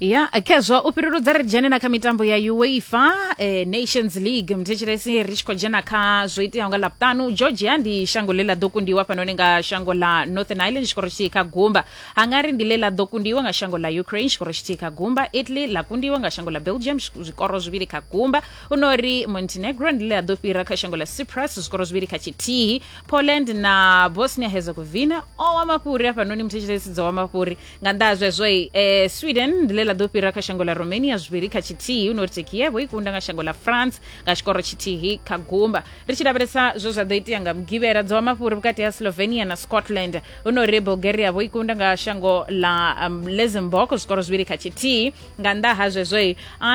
ya khezwo u fhiruludza ri dzhene na kha mitambo ya uefa eh, nations league mthetshelesi ri tshi khou dzhena kha zwo iteaho nga ḽavhutanu georgia ndi shango ḽe ḽa ḓo kundiwa fhanoni nga shango ḽa northern ireland tshikoro tshithihi kha gumba hungary ndi ḽe ḽa ḓo kundiwa nga shango ḽa ukraine tshikoro tshithihi kha gumba italy ḽa kundiwa nga shango ḽa belgium zwi- zwikoro zwivhili kha gumba hu no ri montenegro ndi ḽe ḽa ḓo fhira kha shango ḽa cyprus zwikoro zwivhili kha tshithihi poland na bosnia herzegovina o wa mafhuri hafhanoni muthetshesi dzo wa mafhuri nga nnḓa ha zwezwo eh, sweden ndi ḽe ḽa ḓo fhira kha shango ḽa romania zwivhili kha tshithihi hu no ri tekievo i kunda nga shango ḽa france nga tshikoro tshithihi kha gumba ri tshi lavhelesa zwe zwa ḓo itea nga mugivhela dzo wa mafhuri vhukati ha slovenia na scotland hu no ri bulgaria vho i kunda nga shango ḽa um, luxembourg zwikoro zwivhili kha tshithihi nga nnḓa ha zwezwo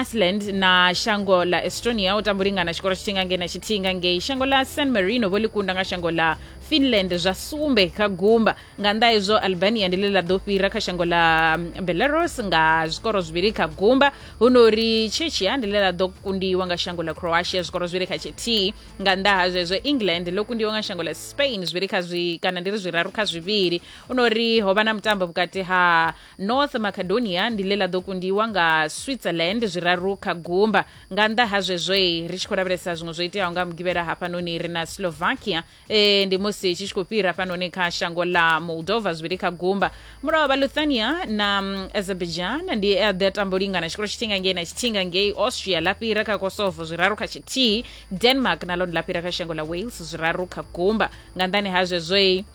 iceland na shango ḽa estonia u tamba u lingana tshikoro tshithihi nga ngei na tshithihi nga ngei shango ḽa san marino vho ḽi kunda nga shango ḽa finland zwa sumbe kha gumba nga nnḓa hezwo albania ndi ḽe ḽa ḓo fhira kha shango ḽa mm, belarus nga zwikoro zwivhili kha gumba hu no uri chechia ndi ḽe ḽa ḓo kundiwa nga shango ḽa croatia zwikoro zwivhili kha tshithihi nga nnḓa ha zwezwo england ḽo kundiwa nga shango ḽa spain zwivhili kha zwi kana ndi ri zwiraru kha zwivhili hu no uri ho vha na mutambo vhukati ha North Macedonia ndi ḽe ḽa ḓo kundiwa nga Switzerland zwiraru kha gumba. Nga nnḓa ha zwezwoi, ri tshi khou lavhelesa zwiṅwe zwo iteaho nga Mugivhela hafhanoni ri na Slovakia e ndi musi tshi tshi khou fhira hafhanoni kha shango ḽa Moldova zwivhili kha gumba. Mulaho vha Lithuania na Azerbaijan ndi e a ḓi a tamba u lingana tshikolo tshithinga ngei na tshithinga ngei Austria ḽa fhira kha Kosovo zwiraru kha tshithihi. Denmark na ḽone ḽa fhira kha shango ḽa Wales zwiraru kha gumba. Nga nnḓani ha zwezwoi,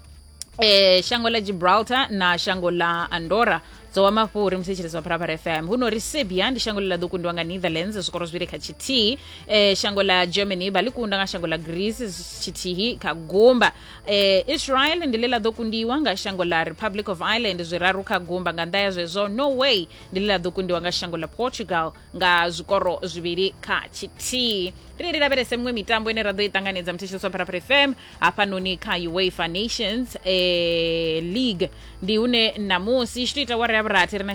eh, shango la gibraltar na shango la andorra dzowa mafhuri musi tshilidzo wa phalaphala fm huno ri serbia ndi shango ḽa ḓo kundiwa nga netherlands zwikoro zwivhili kha tshithihi eh, shango la germany vha ḽi kunda nga shango ḽa greece tshithihi kha gumba eh, israel ndi ḽe ḽa ḓo kundiwa nga shango ḽa republic of ireland zwiraru kha gumba nga nnḓa ya zwezwo norway ndi ḽe ḽa ḓo kundiwa nga shango ḽa portugal nga zwikoro zwivhili kha tshithihi ri ri lavhelese miṅwe mitambo ine ra ḓo i ṱanganedza muthetshelesi wa pharapara fm hafhanoni kha uefa nations eh, league ndi hune ṋamusi i tshi tou ita wara ya vhurathi ri na